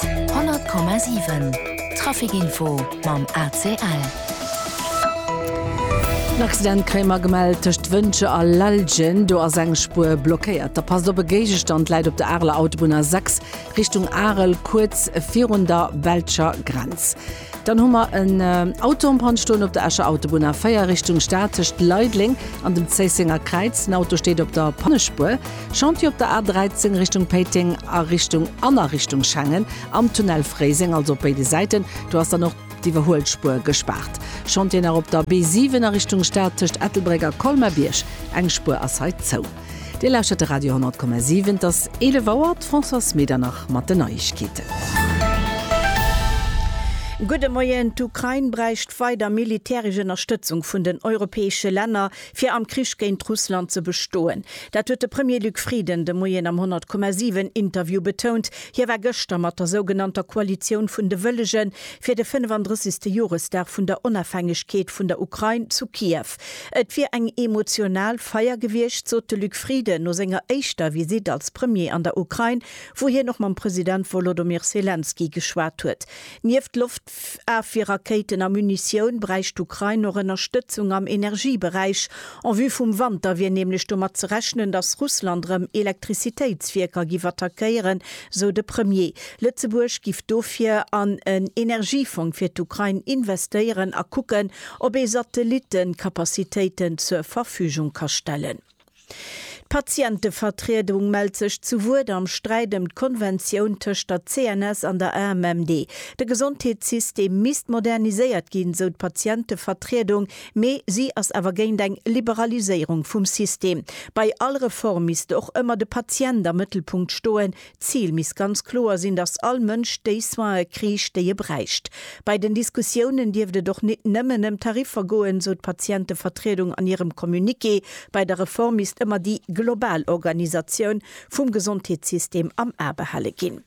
100,7 Trafic Info mam ACL. En Accident kréie mer gemellt tëscht Wëntger a Lellgen. Do ass eng Spuer blockéiert. Da passt op, e Géigestand läit op der Areler Autobunn A6 Richtung Arel, kuerz virun der belscher Grenz. Dann hu mer en Auto en panne stoen op der Escher Autobunn, A4 Richtung Stad tëscht Leideleng an dem Zéissenger Kräiz. Den Auto steet op der Pannespuer. Chantier op der A13 Richtung Péiteng a Richtung an a Richtung Schengen am Tunnel Fréiseng, also op béide Säiten. Do ass dann och d'Iwwerhuelspuer gespaart. Chantier nach op der B7 a Richtung Stad tëscht Ettelbréck a Colmer-Bierg. Eng Spuer ass hei zou. Dir lauschtert de Radio 10,7. Et ass 11 Auer, d'Françoise Medernach mat den Neiegkeeten. Gudde Moien, D'Ukrain bräicht weider militäresch Ënnerstëtzung vun den europäesche Länner, fir am Krich géint Russland ze bestoen. Dat huet de Premier Luc Frieden de Moien am 10,7 Interview betount. Hie war gëschter mat der sougenannter Koalitioun vun de Wëllegen fir de 35. Joresdag vun der Onafhängegkeet vun der Ukrain zu Kiew. Et wier eng emotional Feier gewiescht, sot de Luc Frieden no senger éischter Visitt als Premier an der Ukrain, wou hien och mam President Wolodomyr Selenskyj geschwat huet. Nieft Loftafwierrakéiten a Munitioun bräicht d'Ukrain och Ënnerstëtzung am Energieberäich. En vue vum Wanter wier nämlech domat ze rechnen, datt Russland erëm Elektrizitéitswierker giff attackéieren, sou de Premier. Lëtzebuerg giff dofir an en Energiefong fir d'Ukrain investéieren a kucken, Ob ee Satellitten d'Kapazitéiten zur Verfügung ka stellen. D'Patientevertriedung mellt sech zu Wuert am Sträit ëm d'Konventioun tëscht der CNS an der AMMD. De Gesondheetssystem misst moderniséiert ginn, sou d'Patientevertriedung, mee si ass awer géint eng Liberaliséierung vum System. Bei all Reform misst och ëmmer de Patient am Mëttelpunkt stoen, D'Zil misst ganz kloer sinn, datt all Mënsch déi Soine kriicht, déi e bräicht. Bei den Diskussiounen dierft et och nit nëmmen ëm Tariffer goen, esou d'Patientevertriedung an hirem Communiqué. Bei der Reform misst ëmmer déi global Organisatioun vum Gesondheetssystem am A behale ginn.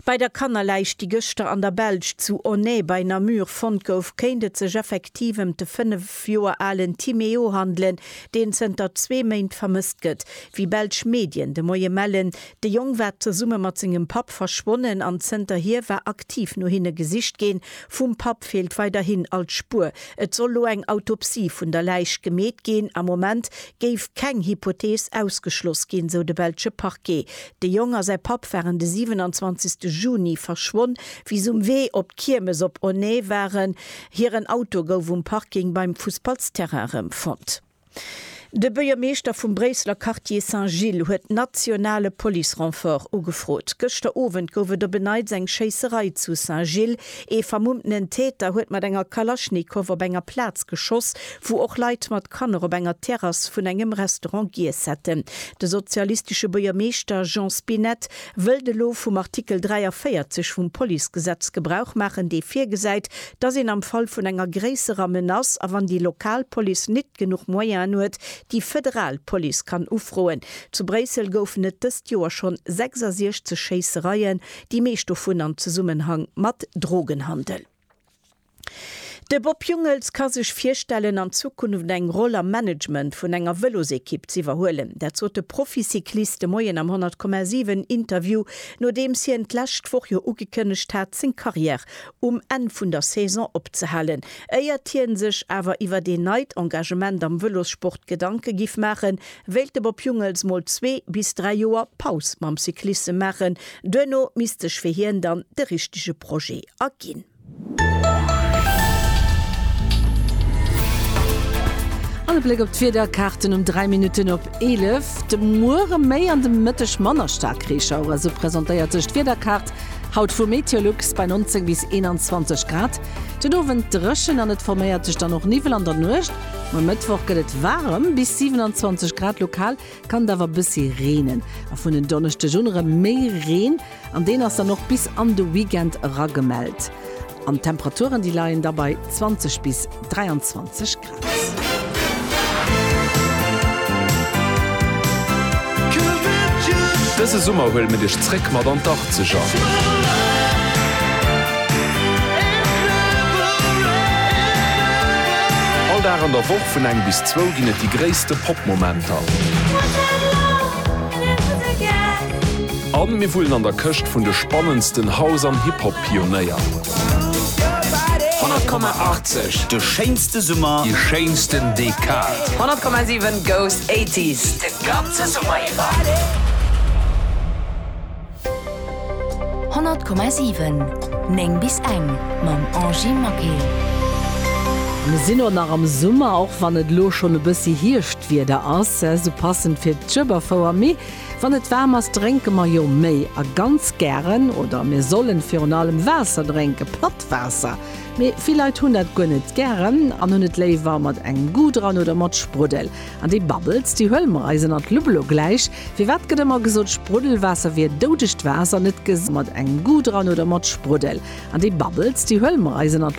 Bei der Kannerläich, déi gëschter an der Belsch zu Aunay bei Namur fonnt gouf, kéint et sech effektiv ëm d'Fënnef. 5 Joer alen Timéo handelen, deen zënter zwee Méint vermësst gëtt. Wéi belsch Medien de Moie mellen, de Jong war zesumme mat sengem Papp verschwonnen an zënterhier war aktiv no hinne gesicht ginn. Vum Papp feelt weiderhin all Spuer. Et soll lo eng Autopsie vun der Läich gemeet ginn. Am Moment géif keng Hypothees ausgeschloss ginn, sou de belsche Parquet. De Jong a säi Papp waren de 27 Juni verschwonn, wéi se um Wee op d'Kiermes op Onnae waren. Hiren Auto gouf um Parking beim Fussballsterrain rëm fonnt. De Buergermeeschter vum Bréisseler Quartier Saint-Gilles huet nationale Police-Renfort ugefrot. Gëschter Owend gouf et op en Neits eng Schéisserei zu Saint-Gilles. Ee vermummtenen Täter huet mat enger Kalaschnikow op enger Plaz geschoss, wou och Leit mat Kanner op enger Terrass vun engem Restaurant giess hätten. De sozialistesche Buergermeeschter Jean Spinett wëllt elo vum Artikel 43 vum Policegesetz Gebrauch maachen, dee virgesäit, dass een am Fall vun enger gréisserer Menace a wann déi lokal Police nit genuch Moyenen huet, déi federal Police kann ufroen. Zu Bréissel goufen et dëst Joer schonn 66 Schéissereien, déi meescht dovun am Zesummenhang mat Drogenhandel. De Bob Jungels ka sech virstellen, an Zukunft eng Roll am Management vun enger Vëlosekipp z'iwwerhuelen. Dat sot de Proficyclist de Moien am 100,7 Interview, nodeems hien d'lescht Woch jo ugekënnegt hat, seng Karriär um Enn vun der Saison opzehalen. Éiert hie sech awer iwwer een neit Engagement am Vëlossport Gedanke giff maachen, Wéilt de Bob Jungels mol zwee bis dräi Joer Paus mam Cyclissem maachen, duerno misst sech fir hien dann de richtege Projet erginn. An e Bléck op d'Wiederkaarten um 3 Minutten op 11. De Muere méi an de Mëtteg manner staark Reeschauere, sou presentéiert sech d'Wiederkaart haut vu Meteolux bei 19 bis 21 Grad. Den Owend dréchen an et forméiert sech dann och Niwwel an der Nuecht. Um Mëttwoch gëtt et waarem, bis 27 Grad, lokal kann et awer e bëssi reenen. A vun en Donneschdeg un erëm méi Reen, an deen ass dann och bis an de Weekend era gemellt. An d'Temperaturen, déi leien da bei 20 bis 23 Grad. Dëse Summer huele mir dech zréck mat an d'Arkzeger. All Dag an der Woch vun eng bis zwou ginn et déi gréisste Pop-Momenter. A mir wullen an der Këscht vun de spannendsten House an Hip-Hop-Pionéier. 100,80, de schéinste Summer, déi schéinsten Dekad. 100,7 goes 80s de ganze Summer iwwer. 100,7 9 bis eng mam Angy Maquet. Mir sinn och nach am Summer, och wann et elo schonn e bëssi Hierschtwieder ass, esou passend fir d'Schueberfouer. Mee wann et waarm ass, drénke mer jo méi a ganz gären, oder mir sollen virun allem Waasser drénken, platt Waasser. Mee vill Leit hunn dat guer net gären an hunn et léiwer mat engem Goût dran oder mat Spruddel. An déi Bubbles, déi huele mer eis ënnert d'Lupp elo gläich. Firwat gëtt ëmmer gesot, Spruddelwaasser wier doudegt Waasser? Net gesot mat engem Goût dran oder mat Spruddel. An déi Bubbles, déi huele mer eis ënnert.